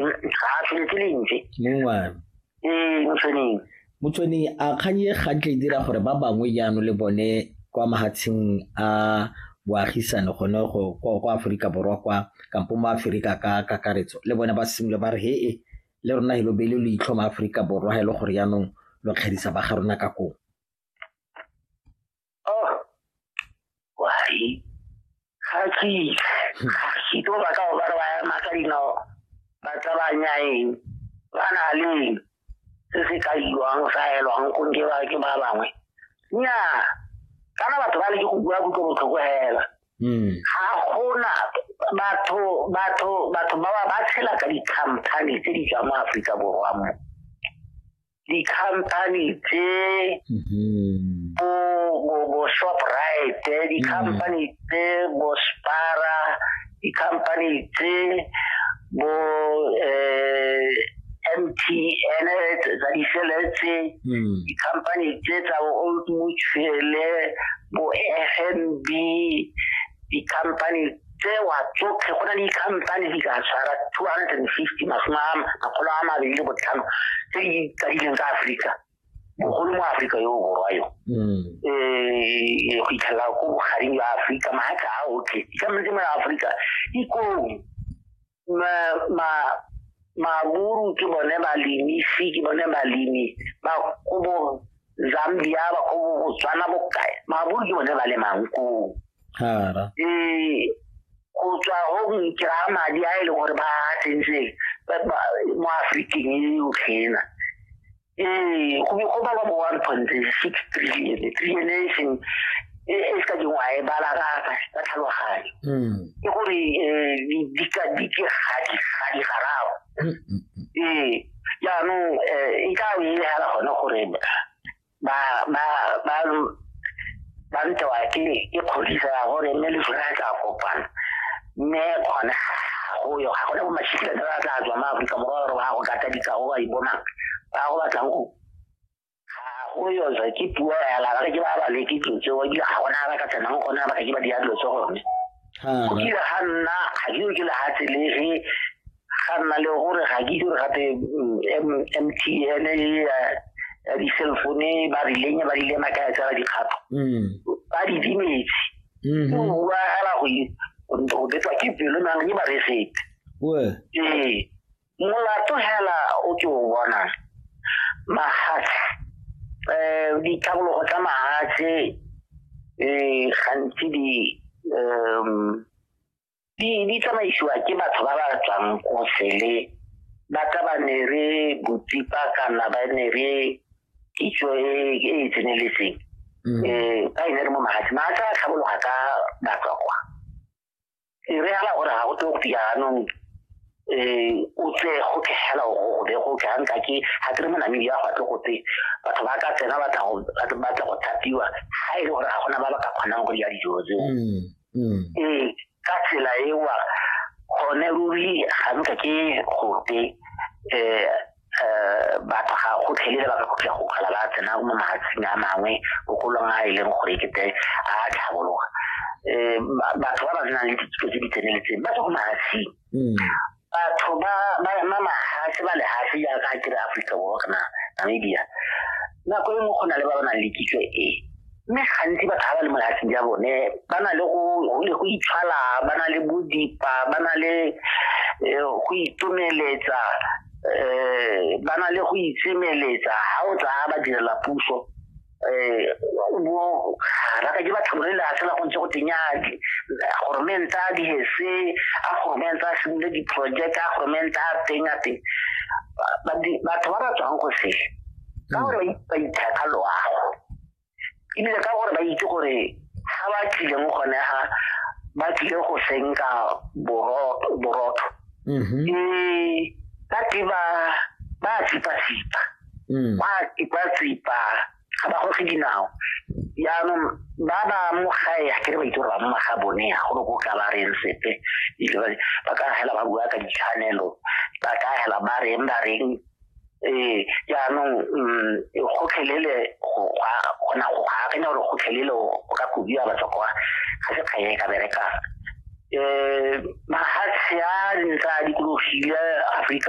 ga se ke lentse mongwana ee motsweneng motsweneng a kgang e gantle e dira gore ba bangwe jaanong le bone kwa mahatsheng a boagisane gone go kwa aforika borwa kwa kampo mo aforika ka kakaretso le bone ba simole ba re he e le rona he lo beile lo itlho mo aforika borwa ga e le gore jaanong lo kgedisa ba ga rona ka koo oh why ga ke ga ke to ba ka ba ba ma ka dino ba tla ba nyaeng ba na le se se ka iwang sa elwang go ke ba ke ba bangwe nya kana batho ba le ke go bua go tlo botlhoko hela hmm. ga gona batho batho batho ba ba tshela ka di-company tse di tswa mo aforika borwa mo di-company tse mm-hmm. bo bo bo shoprite eh, di-company mm. tse bo spara di-company tse bo eh MTN tsa diseletse mm. di-company tse tsa bo old mutual bo FNB di-company tsewa tsotlhe go na le dikhamphane di ka tshwara two hundred and fifty masome a makgolo a mabedi le botlhano tse di tsadileng ka aforika bogolo mo aforika yo o borwa yo um go itlhelela ko bogareng jwa aforika maaka a otlhe dikamane tse mo aforika ikong maburu ke bone balemi fi ke bone balemi ba ko bo zambia ba ko bo botswana bokae maburu ke bone ba le mankoo ee go tswa go nkira madi a e leng gore ba tsentse mo aforikeng e yotlhena ee go go bala bo one point six trillion trillion e seng e, e se ka dingwa e bala ka ka tlhaloganyo hmm. ke gore eh, di ka di ke ga di ga di garago hmm, hmm, ee jaanong um e ka nne fela gone gore ba ba ba ba ntewa ke ke kgodiso ya gore mme le sone tla kopana mme gone go yo ga gone bomashitlhe ba tla tswa ma aforika borwa gore ba go kata dikago ba ibonang ba go batlang go go yoza ke puo ya la ke ba ba le ke tsotse wa di ga gona ba ka tsena go gona ba ke ba di adlo tso gone ha kile ga nna ga ke ke le ha tselege ga nna le gore ga ke dire gape mtn mm, ya di-cell phone ba rileng ba rile maka ya tsela dikgato mm. ba di dimetse mm-hmm. o bua gala go betwa ke pelo nang ke ba resete ee molato hela o ke o bona mahatshe um eh, ditlhabologo tsa mahatshe um gantsi di um di tsamaisiwa ke batho ba ba tswang ko sele ba ka ba ne re botsipa kana ba ne re kitso e, e e tseneletseng um mm. eh, ka e ne re mo magatsi magatsi a tlhabologa ka batswakwa e re ala gore ga go tlo go fiya anong um o tse go tlhegela go be go tlanka ke ga ke re mo namedi ya go atle go tse batho ba ka tsena batla go thapiwa ga e le gore ga gona ba ba ka kgonang go dira dijo tseo mm. mm. ee ka tsela ewa gone ruri ga nka ke gote um um batho ga go tlhelele ba ka khutlha go kgala ba tsena mo mahatsing a mangwe bogolong a e leng gore kete a tlhabologa um batho ba ba nang le dithuto tse di tseneletseng ba tswa ko mahatsing mm. batho ba ba ma mahafi ba lehafi ya ka kire Africa Borwa kana Namibia nako e nngwe go na le ba ba nang le kitso e mme gantsi batho ba ba le mo lehafi ya bone ba na le go itshwala ba na le bodipa ba na le eh, go itumeletsa um ba na le go itsemeletsa ga o tsaya ba direla puso um bo raka ke batho re la tsela go ntse go tenyake goromenta a dihese a goromenta a simole diproject a goromenta a teng a teng batho ba ba tswang go se ka mm. gore ba ithata loago ebile ka gore ba itse gore ga ba tlileng gone ga ba tlile go senka borotho mm-hmm. ee ka ke ba ba sipa-sipa mm. ba ba tsipa ga ba goge dinao yaanong ba ba mo gae ga kere ba itse gore ba mo maga bone ya gore ko ka ba reng sepe ba ka hela ba bua ka ditshwanelo ba ka hela ba reng ba reng ee jaanong mm, gotlhelele gona go akanya gore gotlhelele o ka kobiwa batho kwa ga se kganye e ka berekang um mahatshe a ntse a dikologile aforika